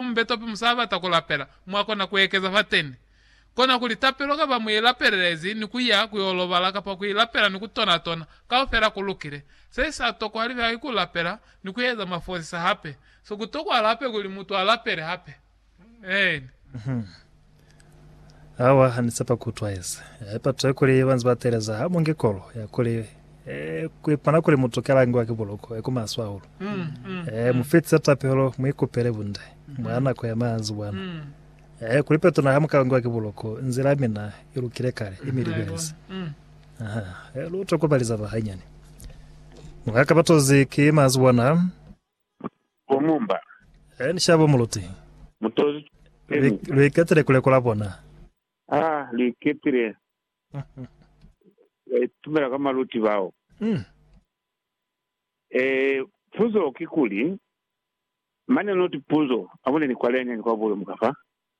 Ku mbeto pe musabata ku lapela, mwa kona ku ekeza fateni. Kona kuli tapelo kaba mu i lapelelezi ni ku ya ku yo lobala kapa ku i lapela ni ku tona tona, kaufela ku lukile. Se sa tokwa hali fela ki ku lapela ni ku eza mafosisa hape. Se ku tokwa hali hape kuli mutu a lapele hape. Amen. Awa hanisapa kutwaeza haipa toe kuli banzi bateleza ha munge kolo ya kuli eh, kuipona kuli mutu kalangiwa ki buloko eku maswe hahulu mm, mm, eh, mm. mufitse tapelo muikupele bunde mm. mwa nako ya maanzi bwana mm. eh, kuli petona ha mukalangiwa ki buloko nzila ya mina ilukile kale mm. imilibelezi mm. aha eh, lutwe kubaliza bahanyani mukaka batozi ki maanzi bwana Bo mumba. He ni shabo muluti. Mutozi Lu, lu iketile ku lekola bona. Ha lu iketile. Ba itumela ka maluti bao. E, puzo kikuli, mane not puzo, abone ni kwa lene ni kwa bule muka fa.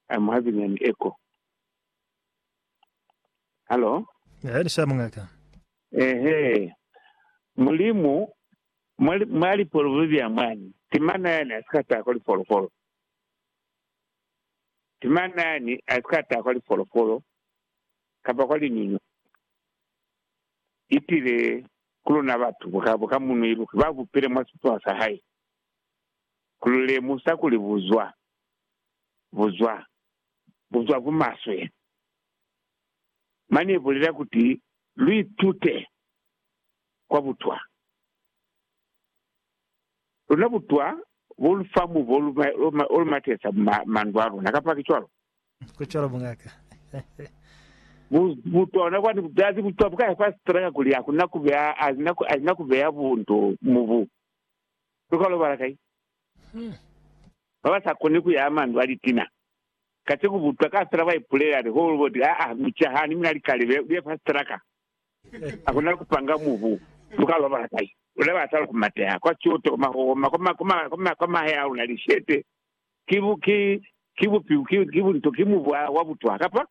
I'm having an echo. Hallo? He ni shabo, Ngaka. Ehe. Mulimu Mwa lipolofolo za mwani, ki mañi yani asika tahwa lifolofolo? Ki mañi yani asika tahwa lifolofolo kamba kwa liñuñu? Itile ku luna batu bukabo ka munwi iluki ba bupile mwa sipono sa hae, ku lu lemusa kuli buzwa, buzwa, buzwa bu maswe. Mane ibulela kuti lu itute kwa butwa. Luna butwa bo lu fa mubo o lu matesa mandu a luna, kapa ki cwalo? Ku cwalo, mungaka. Butona kwani butazi butwa bu ka ya kwa sitela kakuli ha ku na ku beya, ha si na ku beya bundu mu bu lu ka lobala kai? Ba ba sa koni ku ya mandu a litina kaceku butwa ka sitela ba ipulela liholo, bo ti, Aa, mu cahani, mi na likale, lu ye fa sitela ka. Hakuna kupanga mubu muka loba hakai luna batala ku mateha kwa kyoto kwa mahoma kwa mahae a luna. Lishete ki bupi, ki bunto, ki mubu wa butwa kapa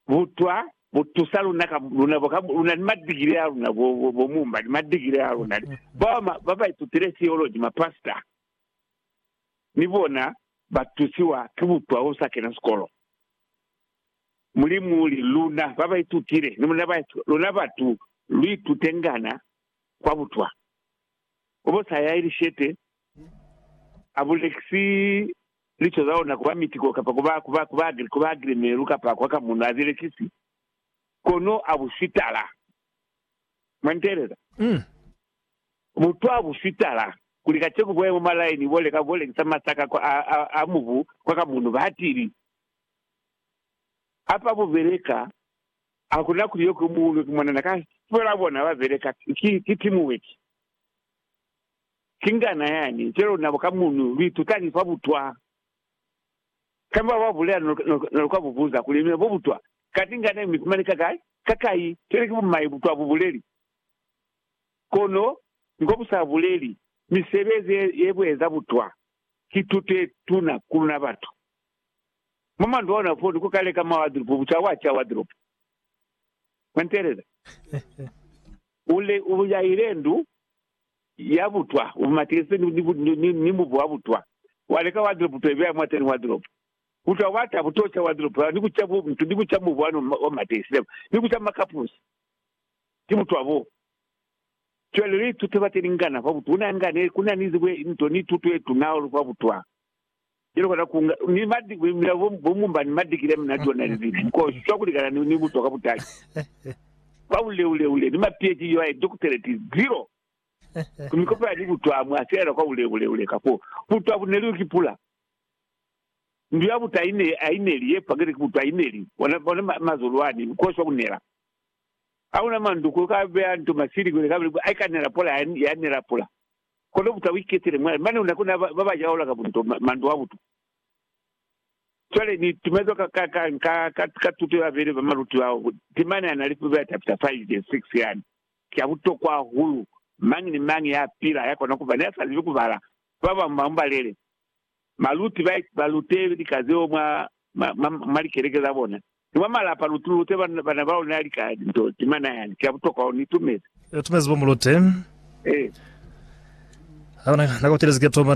butwa bu tusa luna ka luna bo ka luna ni madigiri a luna bo mumba ni madigiri a luna ba ba itutile theology ma pastor ni bona ba tusiwa ki butwa usa kena sikolo. Mulimu uli, Luna ba ba itutile ni muna ba itutile, luna batu, lu itutengana kwa butwa. Kobosa ya lishete a bulekisi lico za ona ku ba mitiko kapa ku ba agrimeru kapa kwa kamuno, a zi lekisi, kono a bu sitala. Mwa nteeleza? Butwa bu sitala. Kuli kaceku bo ya mwa malaini bo leka ku lekisa masaka a mubu kwa kamuno, ba hatili. Apa bu beleka, ha ku na kuli yo ku buulwe ki mwanana ka fela bona ba beleka ki, ki teamwork. Ki ngana yani, cwale luna ka munu lu itutani fa butwa. Kamba ba bulela no, no, no lu ka bu buza kuli, Mine, bo butwa, kati ngana ye mi fumani ka kai, ka kai? Cwale ki bumai butwa bu buleli? Kono, ngo bu sa buleli, misebezi ye, ye bu eza butwa, ki tuto ye tuna ku luna batu. Mwa mandu ona fo ni ku kale ka mwa wadropo, buca wa ca wadropo. Mwa ntelela? U le, u yaile ndu ya butwa, u matilise ni, ni, ni, ni mubu wa butwa. Wa leka wadropo to ibeya mwateni wadropo. Butwa bwa ta bu to ca wadropo yao, ni ku ca bu, ni ku ca mubu wa no wa matilise, ni ku ca makapusi. Ki butwa bo. Cwale lu ituta bateni ngana fa butwa. Una nga ne, ku na ni ze, nto ni tuto ye tuna hahulu fa butwa. Cwalo ka takunga ni madi ku imila bo, bo mumba ni madikile a munati ona ni libi, nkosi, cwa kulikana ni, ni butwa ka butali, kwa buleule-ule, ni mapieci yo aye dokuteleti, zero. Ku mikopo ya libutwa amwe a silaela kwa buleule-ule, ka fo butwa bu neliwi ki pula. Ndu ya butwa aine, aineli, ye pangile ki butwa aineli, bona, bona ma, mazolo ani, nkosi wa kunela. Hakuna mandu ko ka beya nto masili kwele kabili, aikanela pula ya, ya nela pula. Kono buta uiketele mwali mane una kuna ba ba jaula ka bunto mandu a butu. Cwale ni tumezwa ka, ka, ka, ka, ka, ka tuto ya bene ba maluti bao, temana ya na li Pubela chapter 5 verse 6 yani. Ki ya butokwa hahulu. Mañi ni mañi ya pila ya kona kuba ne a sa zibi kubala, ba bañwi ba mu balele. Baluti ba ba lute lika zeo mwa, mwa, mwa, mwa likeleke za bona, ni mwa malapa. Lu lute bana, bana ba luna lika linto ze mana. Yani ki ya butokwa hahulu. Ni itumezi. Ni itumezi bo mu lute. Ee. Ha ku na, na ku telezi ki ya toma.